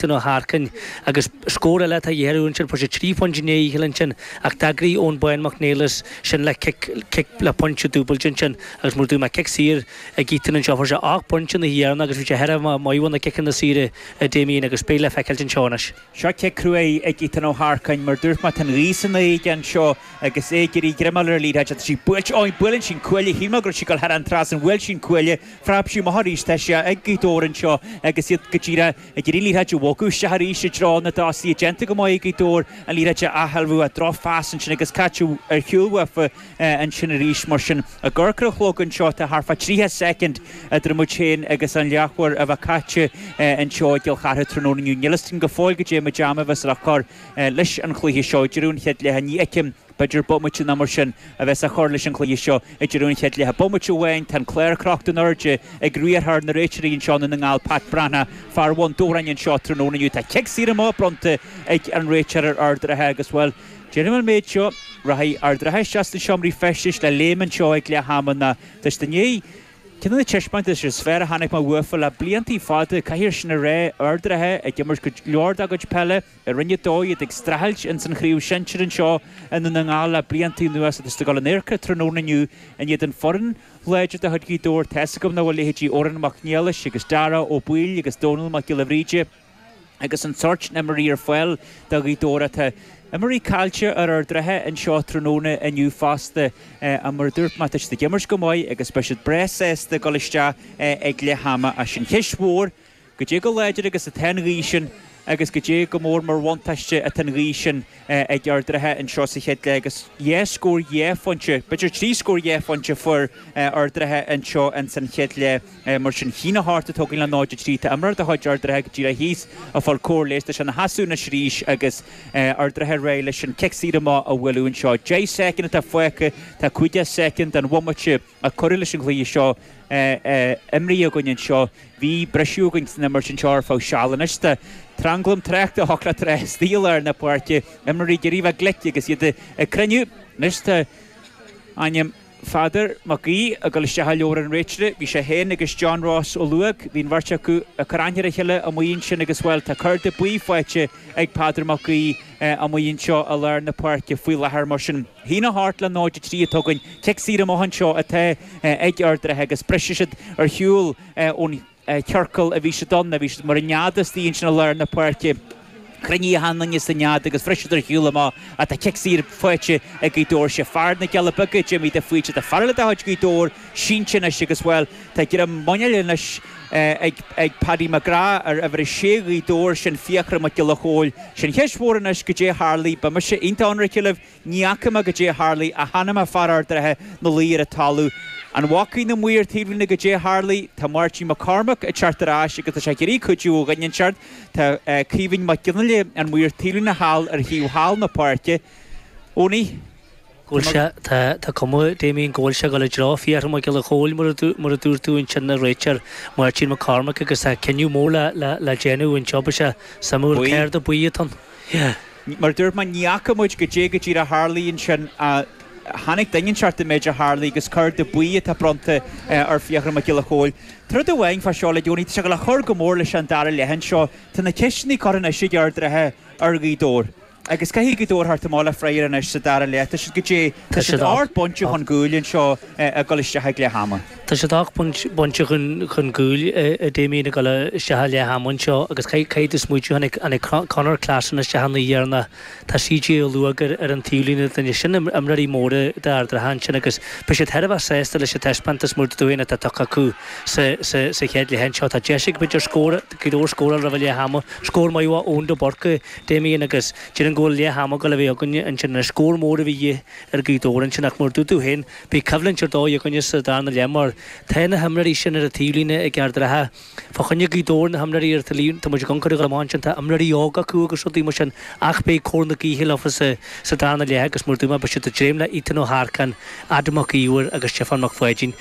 Seán Ó hEarcáin, agus scór eile atá a dhíth orthu ansin. Fuair sé trí phointe i ndiaidh a chéile ansin ach d'fhreagair Eoin Bán Mac Niallais sin le cic, cic le pointe dúbailte ansin agus mar a dúirt mé cic saor ag Ethan anseo, fuair sé ocht bpointe ina dhiaidh ann agus bhí sé thar a bheith maith ó na ciceanna saora, a Damien agus beidh le feiceáil anseo anois. Seo cic crua ag Ethan Ó hEarcáin, mar dúirt mé, tá an ghaoth san aer aige anseo agus é ag iarraidh greim a fháil ar an liathróid. Tá sí buailte, ó, buaileann sí an cuaille, shíl mé go raibh sí ag dul thar an trasnán, bhuail sí an cuaille, phreab sí amach arís, tá sí ag Gaoth Dobhair anseo agus iad go díreach. Ag iarraidh an liathróid a bhogadh isteach arís i dtreo na dtosaithe. Déanta go maith ag Gaoth Dobhair an liathróid a athshealbhú, ach drochphas ansin agus caite ar shiúl uafa ansin arís. Mar sin, ag amharc ar an chlog anseo, tá thart fá 30 soicind idir muid féin agus an leathuair a bheith caite anseo i gCill Chartha tráthnóna inniu. Níl fhios agam go fóill goidé an méid ama a bheas le cur leis an chluiche seo ag deireadh an chéad leithe. Ní fheicim. B'fhéidir bomaite nó mar sin a bheas á chur leis an chluiche seo ag deireadh an chéad leath. Bomaite amháin, tá an clár crochta in airde ag riarthóir na réiteoirí anseo i nDún na nGall, Pat Breathnach, fear Bhun Dobhráin anseo tráthnóna inniu. Tá cic saor amach bronnta ag an réiteoir ar Ard an Rátha agus, bhuel, déarfainn an méid seo, rachaidh Ard an Rátha isteach sna seomraí feistis le léim anseo ag leath ama nó tá siad i ndiaidh ceann de na taispeántais is fearr a chonaic mé uafa le blianta fada, caithfear sin a rá. Ard an Rátha ag imirt go leor dá gcuid peile. I Roinn 2, iad ag streachailt ins an chraobh shinsir anseo i nDún na nGall le blianta anuas agus iad ag gabháil in adharca tráthnóna inniu in éadan foireann láidir de chuid Ghaoth Dobhair tá's agam nach bhfuil leithéidí Odhrán Mac Niallais agus Dara Ó Baoill agus Dónal Mac Giolla Bhríde agus an sórt sin imreoirí ar fáil do Ghaoth Dobhair ach tá imreoirí caillte ar Ard an Rátha anseo tráthnóna inniu fosta ach mar a dúirt mé tá siad ag imirt go maith agus beidh siad breá sásta dul isteach ag leath ama ach sé an cheist mhór ná Goidé chomh láidir agus atá an ghaoth sin agus goidé chomh mór mar bhuntáiste atá an ghaoth sin ag Ard an Rátha anseo sa chéad leath agus dhá scór dhá phointe, b'fhéidir trí scór dhá phointe fuair Ard an Rátha anseo ins an chéad leath. Mar sin 1-8 atá againn le 0-3 tá imreoir de chuid Ard an Rátha go díreach thíos ag fáil cóir leighis, tá sé ina sheasamh anois arís agus Ard an Rátha réidh leis an cic saor amach a bhualadh anseo. Deich soicind atá fágtha, tá 50 soicind den bhomaite a cuireadh leis an gcluiche seo imrithe againn anseo i Bhí briseadh againn san imirt anseo ar feadh seal anois tá tranglam tráchta acu go díreach istigh i lár na páirce, imreoirí ag iarraidh a bheith glic agus iad ag cruinniú. Anois tá ainm Pheadair Mac Aoidh ag dul isteach i leabhar an réiteora. Bhí sé féin agus John Ross Ó Ludhóg, bhí an bheirt acu ag cur aithne ar a chéile amuigh ansin agus, bhuel, tá cárta buí faighte ag Peadar Mac Aoidh amuigh anseo i lár na páirce faoi láthair mar sin. 1-8 le 0-3 atá againn, cic saor amach anseo atá ag Ard an Rátha agus briseann siad ar shiúl ón chiorcal a bhí siad ann. Bhí siad mar an nead istigh ansin i lár na páirce. Cruinnithe go teann ins an nead agus bhris siad ar shiúl amach ach tá cic saor faighte ag Gaoth Dobhair. Sé fear na gCealla Beaga, Jimmy de Faoite, tá fear eile de chuid Ghaoth Dobhair, sínte anois agus, bhuel, tá greim muiníl anois ag Paddy McGrath ar uimhir a sé Ghaoth Dobhair, sin Fiachra Mac Giolla Chomhaill, sin an cheist mhór anois goidé a tharlaigh, beidh mise iontach ionraice libh, ní fhaca mé goidé a tharlaigh, ach chonaic mé fear Ard an Rátha ina luí ar an talamh. An bhfacaidh na maoir taobhlíne goidé a tharlaigh? Tá Máirtín Mac Cormaic ag teacht ar ais agus tá sé ag iarraidh cuidiú ó dhuine inteacht, tá Caoimhín Mac Fhionnghaile, an maor taobhlíne thall ar thaobh thall na páirce, Eoiní. Go bhfuil sé, tá, tá cuma, Damien, go bhfuil sé ag gabháil i dtreo Fiachra Mac Giolla Chomhaill, mar a, mar a dúirt tú ansin, an réiteoir Máirtín Mac Cormaic agus tá cinneadh mór le, le, le déanamh, anseo beidh sé suimiúil, Buí. Cárta buí atá ann? Yeah. Mar a dúirt mé, ní fhaca muid goidé go díreach a tharlaigh ansin, ach chonaic duine inteacht an méid a tharlaigh agus cárta buí atá bronnta ar Fiachra Mac Giolla Chomhaill. Rud amháin fá seo, le déanaí, tá sé ag cur go mór leis an dara leath anseo, tá na ceisteanna curtha anois ag Ard an Rátha ar Ghaoth Dobhair. Agus caithfidh Gaoth Dobhair a theacht amach le freagra anois sa dara leath. Tá siad goidé. Tá siad ocht bpointe chun cúil anseo ag dul isteach ag leath ama. Tá siad ocht bpointe chun cúil, a Damien, ag dul isteach ag leath ama anseo agus caithfidh tú smaoitiú, tháinig Conor Classon isteach an oíche dheireanach, tá CJ Molloy acu ar an taobhlíne duine, sin imreoirí móra d'Ard an Rátha ansin agus beidh siad thar a bheith sásta leis an taispeántas mór dúinn atá tugtha acu sa chéad leath anseo. Tá deis acu b'fhéidir scór, Gaoth Dobhair scóráil roimh leath ama, scór maith ó Eoin de Búrca, Damien, Agus déarfainn go bhfuil leath ama ag gabháil a bheith againne ansin an scór mór a bhí de dhíth ar Ghaoth Dobhair ansin ach mar a dúirt tú féin, beidh coimhlint ar dóigh againne sa darna leath mar tá na himreoirí sin ar an taobh líne ag Ard an Rátha fá choinne Gaoth Dobhair na himreoirí ar tá muid i gconcaireacht leo amach ansin tá imreoirí óga acu agus rudaí mar sin ach beidh cóir na gaoithe leofa sa darna leath agus mar a dúirt mé beidh siad ag dréim le Ethan Ó hEarcáin, Adam Mac Íomhair agus Stiofán Mac Pháidín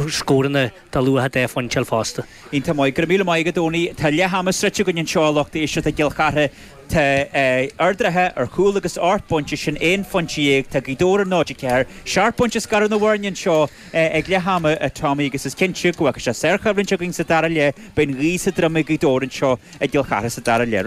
scóranna De luach dhá phointe a fháil fosta. Iontach maith. Go raibh míle maith agat, Eoiní. Tá leath ama sroichte againn anseo, a lucht éisteachta i gCill Chartha. Tá Ard an Rátha ar chúl agus ocht bpointe, sin aon phointe dhéag. Tá Gaoth Dobhair ar náid a ceathair. Seacht bpointe ag scaradh na bhfoirne anseo ag leath ama, atá muid, agus is cinnte a lucht éisteachta sárchoimhlint againn sa dara leath. Beidh an ghaoth sa droim ag Gaoth Dobhair anseo i gCill Chartha sa dara leath.